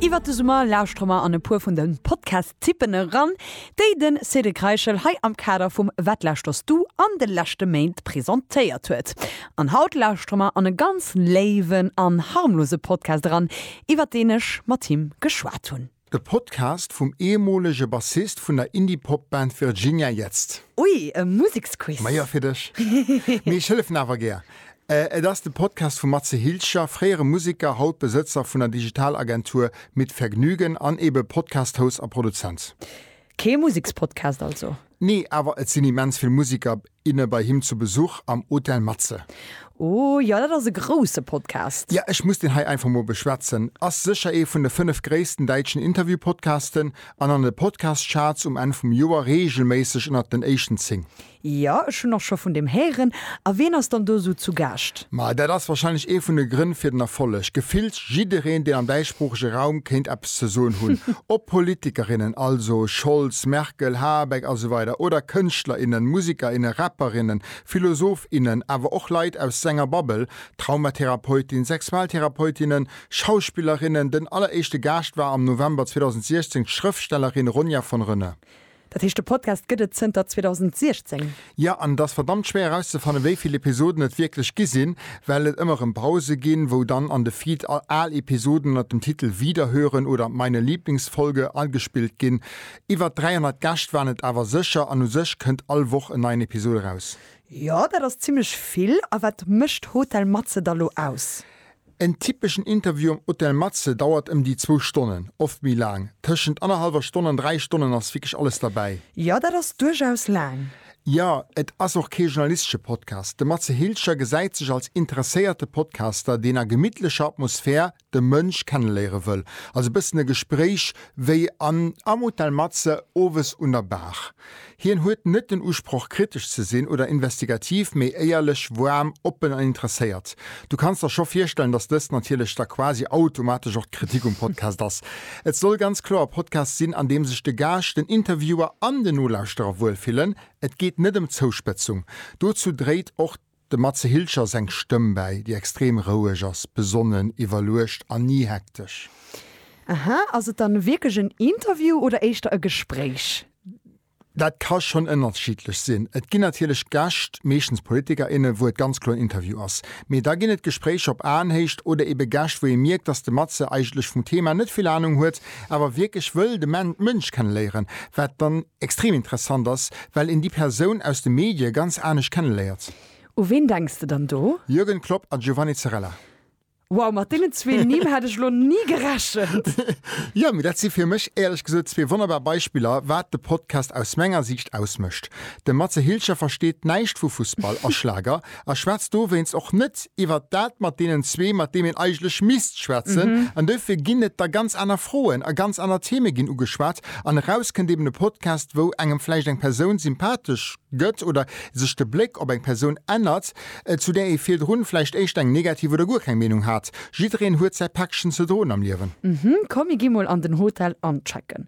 Iwwert de Summer lauschtere mer an e puer vun de Podcast-Tippen eran, déi de Cédric Reichel hei am Kader vum Wat lauschterst du an de leschte Méint presentéiert huet. An haut lauschtere mer an e ganz léiwen an harmlose Podcast eran, iwwert deen ech mat him geschwat hunn. E Podcast vum ehemolege Bassist vun der Indie-Pop-Band Virginia Jetzt. Ui, e Museksquiz! Majo, fir dech. Mee ech hëllefen awer gär. Et ass de Podcast vum Matze Hilscher, fréiere Museker, haut Besëtzer vun der Digital-Agentur Mit Vergnügen an ebe Podcast-Host a Produzent. Kee Musekspodcast also? Nee, awer et sinn immens vill Musiker, inne bei him zu Besuch am Hotel Matze. Oh jo, dat ass e grousse Podcast. Jo, ech muss deen hei einfach mol beschwätzen. Ass sécher ee vun de 5 gréissten däitschen Interviewpodcasten an an de Podcast-Charts um Enn vum Joer reegelméisseg ënnert den éischten 10. Jo, ech hunn och scho vun deem héieren. A ween ass dann do esou zu Gaascht? Ma dat ass wahrscheinlech ee vun de Grënn fir den Erfolleg. Gefillt jiddereen, deen am däitschsproochege Raum kéint eppes ze soen hunn, ob Politikerinnen, also Scholz, Merkel, Habeck a sou weider oder Kënschtler, innen, Musiker, innen, Rapper, innen, Philosoph, innen, awer och Leit aus senger Bubble, Traumatherapeutin, Sexualtherapeutinnen, Schauspillerinnen. Den alleréischte Gaascht war am November 2016 d'Schrëftstellerin Ronja von Rönne. Dat heescht de Podcast gëtt et zënter 2016? Jo, an et ass verdammt schwéier erauszefannen, wéi vill Episoden et wierklech gi sinn, well et ëmmer erëm Pause ginn, wou dann an de Feed al Episoden ënnert dem Titel Wiederhören oder Meine Lieblingsfolge agespillt ginn. Iwwert 300 Gäscht waren et awer sécher, an u sech kënnt all Woch en neien Episod eraus. Jo, dat ass zimmlech vill. A wat mécht Hotel Matze da lo aus? En typeschen Interview am Hotel Matze dauert ëm déi zwou Stonnen, oft méi laang. Tëschent annerhallwer Stonn an dräi Stonnen ass wierklech alles derbäi. Jo, dat ass duerchaus laang. Jo, et ass och kee journalistesche Podcast. De Matze Hilscher gesäit sech als interesséierte Podcaster, deen a gemittlecher Atmosphär de Mënsch kenneléiere wëll. Also e bëssen e Gespréich wéi am Hotel Matze owes un der Baach. Hien huet net den Usproch kritesch ze sinn oder investigativ, mee éierlech, woarm, oppen an interesséiert. Du kanns der scho virstellen, dass dëst natierlech da quasi automatesch och d'Kritik um Podcast ass. Et soll ganz kloer e Podcast sinn, an deem sech de Gaascht, den Interviewer an den Nolauschterer wuel fillen. Et geet net ëm Zouspëtzung. Dozou dréit och. Dem Matze Hilscher seng Stëmm bäi, déi extrem roueg ass, besonnen, iwwerluecht an ni hektesch. Aha, ass et dann wierklech en Interview oder éischter e Gespréich? Dat ka schonn ënnerschiddlech sinn. Et ginn natierlech Gäscht, meeschtens Politiker, innen, wou et ganz kloer en Interview ass. Mee da ginn et Gespréicher op Aenhéicht oder ebe Gäscht, wou ee mierkt, datt de Matze eigentlech vum Thema net vill Anung huet, awer wierklech wëll de Mënsch kenne léieren, wat dann Extrem interessant ass, well een déi Persoun aus de Medie ganz anescht kenneléiert. U ween denks de dann do? Jürgen Klopp a Giovanni Zarella. Wow, mat deenen zwee Nimm hätt ech elo ni gerechent! Jo, mee dat si fir mech éierlech gesot zwee wonnerbar Beispiller, wat de Podcast aus menger Siicht ausmécht. De Matze Hilscher versteet näischt vu Fussball a Schlager. a schwätzt dowéinst och net iwwert dat mat deenen zwee, mat deem een eigentlech misst schwätzen. An dofir ginn et da ganz aner Froen a ganz aner Theme ginn ugeschwat. An eraus kënnt eben e Podcast, wou engem vläicht eng Persoun sympathesch gëtt oder sech de Bléck op eng Persoun ännert, zu där ee virdrun vläicht éischter eng negativ oder guer keng Meenung hat. Jiddereen huet säi Päckchen ze droen am Liewen. Komm, mir gi mol an den Hotel anchecken.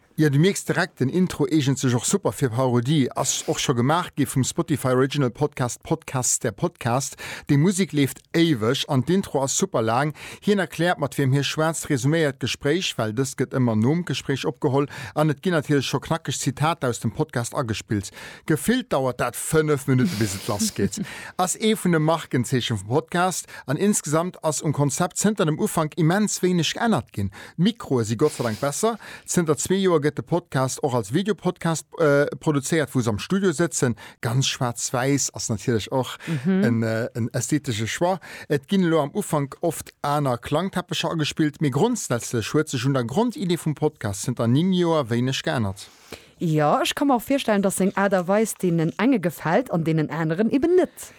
Jo du mierks direkt, den Intro eegent sech och super fir Parodie. Ass och scho gemaach gi vum Spotify Original Podcast Podcasts der Podcast. Déi Musek leeft éiweg an d'Intro ass super laang. Hien erkläert mat wiem hie schwätzt, resuméiert d'Gespréich, well dëst gëtt ëmmer nom Gespréich opgeholl, an et ginn natierlech scho knackeg Zitater aus dem Podcast agespillt. Gefillt dauert dat 5 Minutten bis et lass geet. Ass ee vun de Markenzeechen vum Podcast an insgesamt ass um Konzept zënter dem Ufank immens wéineg geännert ginn. D'Mikroe si gottseidank besser. Zënter zwee Joer gëtt de Podcast och als Videopodcast produzéiert, wou se am Studio sëtzen. Ganz schwaarz-wäiss ass natierlech och en ästhetesche Choix. Et ginn elo am Ufank oft aner Klangteppecher agespillt, mee grondsätzlech huet sech un der Grondidee vum Podcast zënter 9 Joer wéineg geännert. Jo, ech ka mer och virstellen, dass seng Aart a Weis deenen enge gefält an deenen aneren eben net.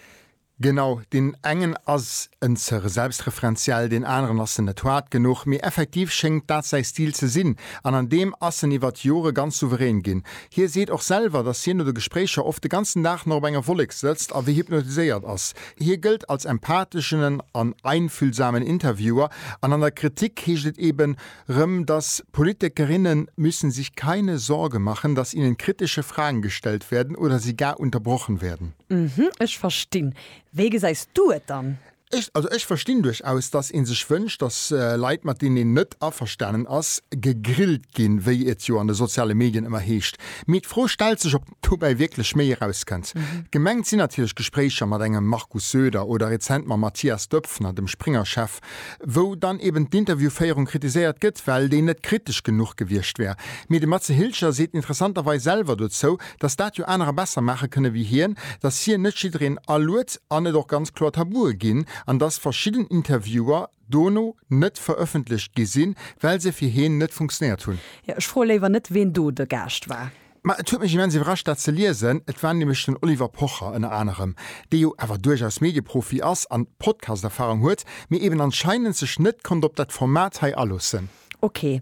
Genau, deen engen ass en ze selbstreferenziell, deen aneren ass en net hard genuch, mee effektiv schéngt dat säi Stil ze sinn an an deem ass en iwwert d'Jore ganz souverän ginn. Hie seet och selwer, datt hien no de Gespréicher oft de ganzen Dag nach op enger Wollek sëtzt a wéi hypnotiséiert ass. Hie gëllt als empatheschenen an einfühlsamen Interviewer an an der Kritik heescht et eben, Rem, dass Politikerinnen müssen sich keine Sorge machen, dass ihnen kritische Fragen gestellt werden oder sie gar unterbrochen werden. Mhm, ech verstinn. Wéi gesäis du et dann? Ech, also ech verstinn duerchaus, dass ee sech wënscht, dass Leit, mat deenen een net averstanen ass, gegrillt ginn, wéi et jo an de soziale Medien ëmmer heescht. Mee d'Fro stellt sech, ob dobäi wierklech méi erauskënnt. Gemengt sinn natierlech Gespréicher mat engem Markus Söder oder rezent mam Matthias Döpfner, dem Springer-Chef, wou dann eben d'Interviewféierung kritiséiert gëtt, well déi net kritesch genuch gewiescht wär. Mee de Matze Hilscher seet interessanterweis selwer dozou, datt dat jo anerer besser maache kënne wéi hien, datt hien net jiddereen aluet an et och ganz kloer Tabue ginn an datt verschidden Interviewer dono net verëffentlecht gi sinn, well se fir hien net funktionéiert hunn. Jo, ech froe léiwer net, ween do de Gaascht war. Mä et huet mech immens iwwerrascht, dat ze liesen. Et war nämlech den Oliver Pocher ënner anerem, dee jo awer duerchaus Medieprofi ass an Podcasterfahrung huet, mee eben anscheinend sech net konnt op dat Format hei aloossen. Ok,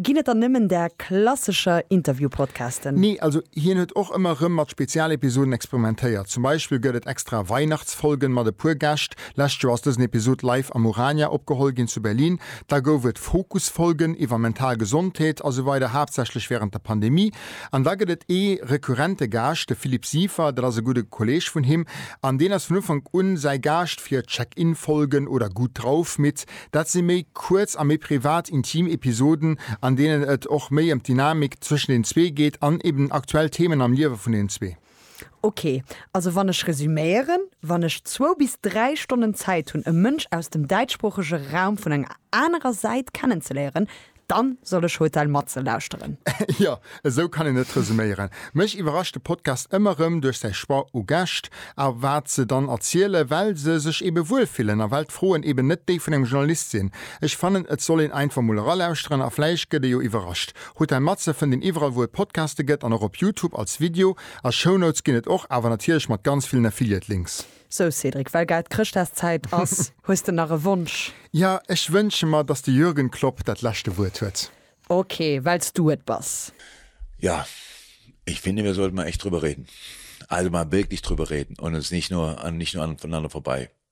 ginn et dann nëmmen där klassescher Interviewpodcasten? Nee, also hien huet och ëmmer erëm mat Spezialepisoden experimentéiert. Zum Beispill gëtt et extra Weihnachtsfolgen mat e puer Gäscht. Lescht Joer ass dësen Episod live am Urania opgeholl ginn zu Berlin. Da gouf et Fokusfolgen iwwer mental Gesondheet a sou weider, haaptsächlech wärend der Pandemie. An da gëtt et ee rekurrente Gaascht, de Philippe Siefer, dat ass e gudde Kolleeg vun him. An deen ass vun Ufank u säi Gaascht fir Check-In-Folgen oder Gut drauf mit. Dat si méi kuerz a méi privat, intim Episoden, an deenen et och méi ëm d'Dynamik zwëschen den zwee geet an eben aktuell Themen am Liewe vun den zwee. Ok, also wann ech resüméieren, Wann ech zwou bis dräi Stonnen Zäit hunn, e Mënsch aus dem däitschsproochege Raum vun enger anerer Säit kennenzeléieren, dann soll ech Hotel Matze lauschteren. Jo, esou kann een et resüméieren. Mech iwwerrascht de Podcast ëmmer erëm duerch säi Choix u Gäscht a wat se dann erzielen, well se sech eebe wuel fillen a well d'Froen eeben net déi vun engem Journalist sinn. Ech fannen, et soll een einfach mol eralauschteren a vläicht gëtt ee jo iwwerrascht. Hutt ein Matze fënnt een iwwerall wou et Podcaste gëtt an och op Youtube als Video. A Shownotes ginn et och, awer natierlech mat ganz villen Affiliate Links. Sou Cédric, well grad Chrëschtdagszäit ass, hues de nach e Wonsch? Jo, ech wënsche mer, dass de Jürgen Klopp dat leschte Wuert huet. Ok, wells du et bass. Ja, ich finde, wir sollten mal echt drüber reden. Also mal wirklich drüber reden und uns nicht nur, nicht nur aneinander vorbei.